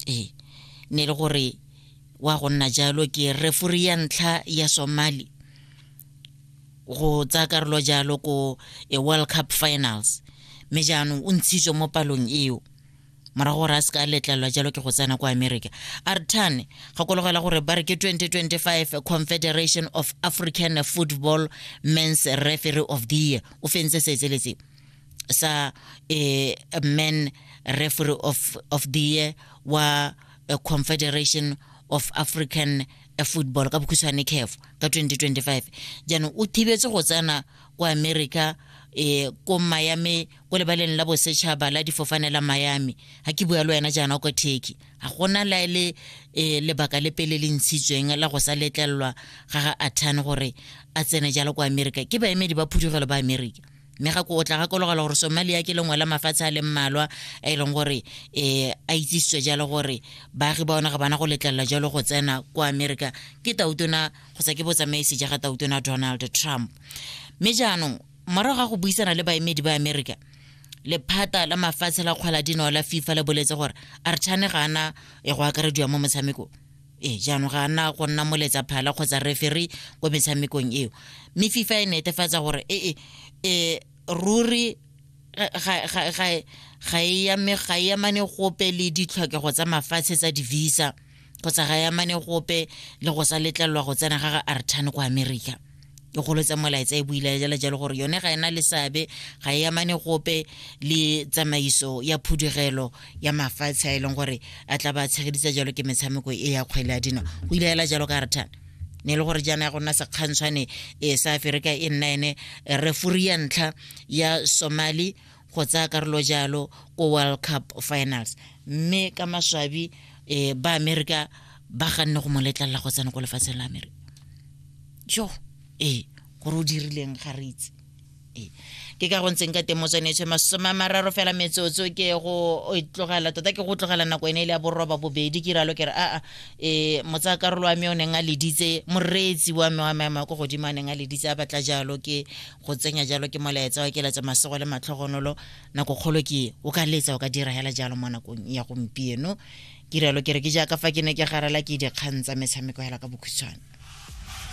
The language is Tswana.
ee ne e le gore wa go nna jalo ke refuri ya ntlha ya somali go tsa karolo jalo ko e world cup finals mme jaanong o ntshitswe mo palong eo morago gore a se ka a letlelelwa jalo ke go tsena kwa america artan gakologela gore ba re ke 2025 confederation of african football mens referee of the year o fentse se etseletseo sa eh, men referee of, of the year wa eh, confederation of african eh, football ka bokhutshwane caf ka 2025 jaanong o thibetse go tsena kwa america eh ko miami ko lebaleng la bosetšhaba la difofane la miami ga ke bua le wena jaana ko turkey ga gona la ele eh, lebaka le pele le ntshitsweng la go sa letlelelwa ga ga athane gore a tsene jalo kwa america ke baemedi ba phudugelo ba america mme ga ko o tla gakologela gore somalia ke lengwe la mafatshe a leng mmalwa a e leng gore um a itsisitswe jalo gore baagi ba one ga bana go letlelela jalo go tsena kwa america ke tautona kgotsa ke botsamaisi ja ga tautona donald trump mme jaanong morago ga go buisana le baemedi ba america lephata la mafatshe la kgwala dinao la fifa le boletse gore archane ga ana e go akarediwa mo motshamekong ee jaanong ga ana go nna moletsa phala kgotsa referi ko metshamekong eo mme fifa e netefatsa gore ee e ruri ga e yamane gope le ditlhokego tsa mafatshe tsa di-visa kgotsa ga e yamane gope le go sa letlelelwa go tsena ga ga artan kwa america e golo tsa molaetsa e buile jala jalo gore yone ga ena le seabe ga e amane gope le tsamaiso ya phudugelo ya mafatshe a e leng gore a tla ba tshegeditsa jalo ke metshameko e ya kgwele ya dino go ile ela jalo ka re thana ne e le gore jaana ya go nna sekgantshwane e sa aferika e nna ene refuri ya ntlha ya somali go tsaya karolo jalo ko world cup finals mme ka maswabi um ba amerika ba ganne go mo letlalela go tsena ko lefatsheng la amerika jo ee gore o dirileng ga re itse ee ke ka go ntseng ka teng motswanetswe masome a mararo fela metsotso ke go e tlogela tota ke go tlogela nako ene e le ya boroba bobedi ke ralo ke re aa e motsa karolo wa me o neng a leditse moreetsi wa me wa maemo a ko godimo a neng a leditse a batla jalo ke go tsenya jalo ke molaetsa wa keletsa masogo le matlhogonolo nako kgolo ke o ka letsa o ka dira hela jalo mo nakong ya gompieno ke rialo ke re ke jaaka fa ke ne ke garela ke dikgang tsa metshameko hela ka bokhutshwane